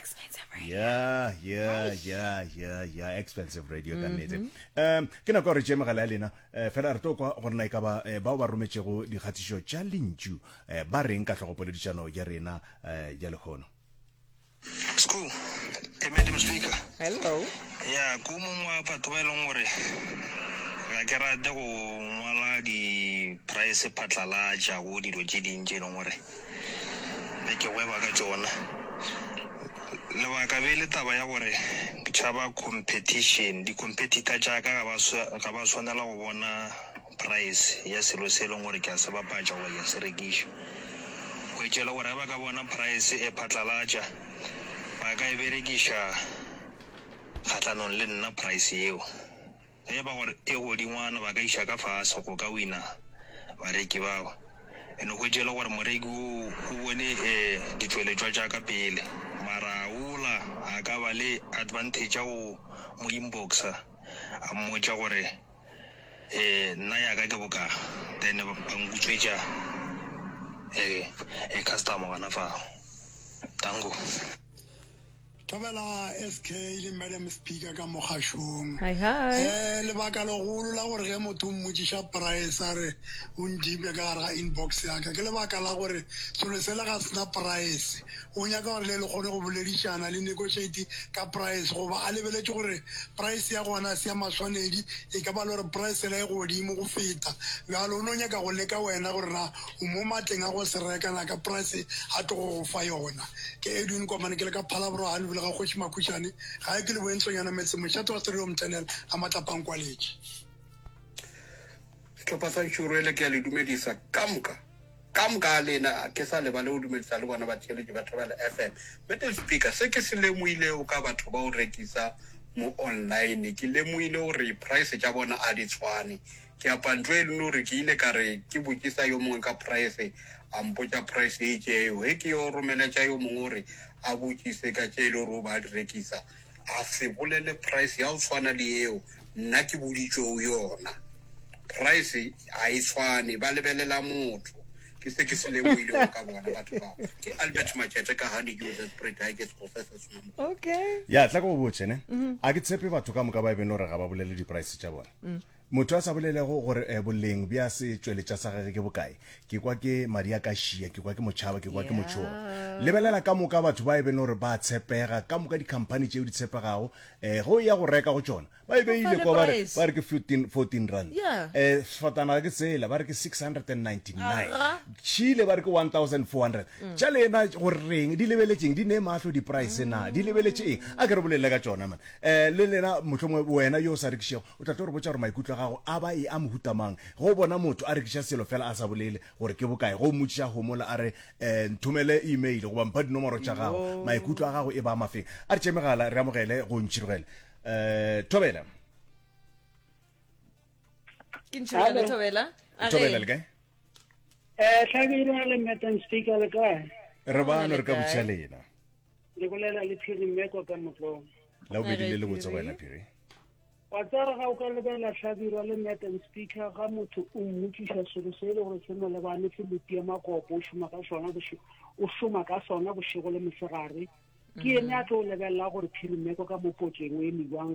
expensive radio yeah yeah yeah yeah yeah expensive radio ka nnete um ke nako gore tše megala ya lena eh, fela re tlo kwa gore na e ka ba eh, bao ba rometšego dikgatišo tša lentšu eh, ba reng ka tlhogopoledišano ya rena eh, ya lehono school hey, madam speaker hello ya ko mongwe wa batho ba e leng gore ga ke rate go ngwala di-price phatlalatša go dilo tše dintši e leng gore be ke gweba ka tšona. Lebaka be le taba ya gore ke tšhaba competition, di-competitor tša ka ga ba sa, ga ba swanela go bona price ya selo se e leng gore ke a se bapatša goba ke a se rekiša. Hwetša e le gore ge ba ka bona price e phatlalatša, ba ka e berekiša kgahlanong le nna price yeo. Ge e ba gore e go dingwana ba ka iša ka fase go ka wina bareki bao, e no hwetše e le gore moreki wo o bone ditšweletšwa tša ka pele mara a wola a ka ba le advantage ya go mo inboxa a mmotša gore nna ya ka ke boka then ba nkutswetša customer gona fao. Danko. Thobela SK le Madam Speaker ka mo kgašong. Hi hi. Eh, lebaka legolo la gore ge motho o mmotšiša price a re o nthipe ka gare ga inbox ya ka ke lebaka la gore selo sela ga se na price. O nyaka gore le le kgone go boledišana, le negotiate ka price goba a lebeletše gore price ya gona ga se ya maswanedi, e ka ba le gore price yela e godimo go feta, bjalo o no nyaka go leka wena gore na O mo matleng a go se reka, na ka price a tlogo go fa yona. Ke Edwin Komane, ke le ka Phalabro ha lebile ga Kgoši Makhušane, gae ke leboeng Tlonyana Metseng, mošate wa Stereo Mthenela a matlapang kwaletše. Sehlopha sa Nxuruele ke a le dumedisa ka moka ka moka ga lena, ga ke sa lebale go dumedisa le bona batheeletši ba Thobela FM. Middle Speaker, se ke se lemohilego ka batho ba go rekisa mo online, ke lemohile gore price tša bona a di tshwane. Ke a pantšwa e le nuri ke ile ka re ke botšisa yo mongwe ka praese, a mpotša praese e itšeego. Ge ke yo romeletša yo mongwe gore a botšise ka tše e le gore o be a di rekisa, a se bolele praese ya go swana le yeo nna ke boditšego yona. Praese ga e swane, ba lebelela motho. Ke se ke se lemohilego ka bona batho bao. Ke Albert Matšete ka Honey Dew Ze Spray Dye ke sego se se sona mo. Okay. Ya, tla ke go botše ne. A ke tshepe batho ka moka ba e beng le gore ga ba bolele dipraese tša bona. Motho a sa bolelego gore eh, boleng bja se tšweletša sa gage ke bokae, ke kwa ke madi a ka šia, ke kwa ke motšhaba, ke kwa ke motšhoga. Lebelela ka moka batho ba e bene gore ba tshepega, ka moka dikhamphani tšeo di tshepegago, eh, ge o ya go reka go tšona, ba e beile kwa ba re, ba re ke 14, 14 rand. Yeah. Eh, sefatanaga ke tsela, ba re ke 699. Aga. Chile ba re ke 1400. Mm. Tša lena gore reng, di lebeletšeng, di ne mahlo di-price na, di lebeletše eng? A ke re bolelele ka tšona man. Eh, le lena mohlomongwe wena yo o sa rekišego, O tla tlo re botša gore maikutlo a gago a ba e a mohuta mang ge o bona motho a rekiša selo fela a sa bolele gore ke bokae. Ge o mmotšiša a homola a re, eh, nthomele email goba mpha dinomoro tša gago, maikutlo a gago e ba a mafeng. A re tšee megala re amogele go Ntšhirogele. Eh, Thobela. Ke Ntšhirogele Thobela. A re- Thobela le kae? Eh, Tlhabile le Madam Speaker le kae? Re bano re ka botšiša lena. le bolela le phiri mme kwa ka motlong la bobedi le le botse go wena phiri wa tsara ga o ka lebela hlabirwa le madam speaker ga motho o mmotsiša selo se e le gore se mo lebane se lotie makopo o šoma ka sona o šoma ka sona bošego le mosegare ke ene a tlo o lebelela gore phiri mmeko ka mo potseng o eme jwang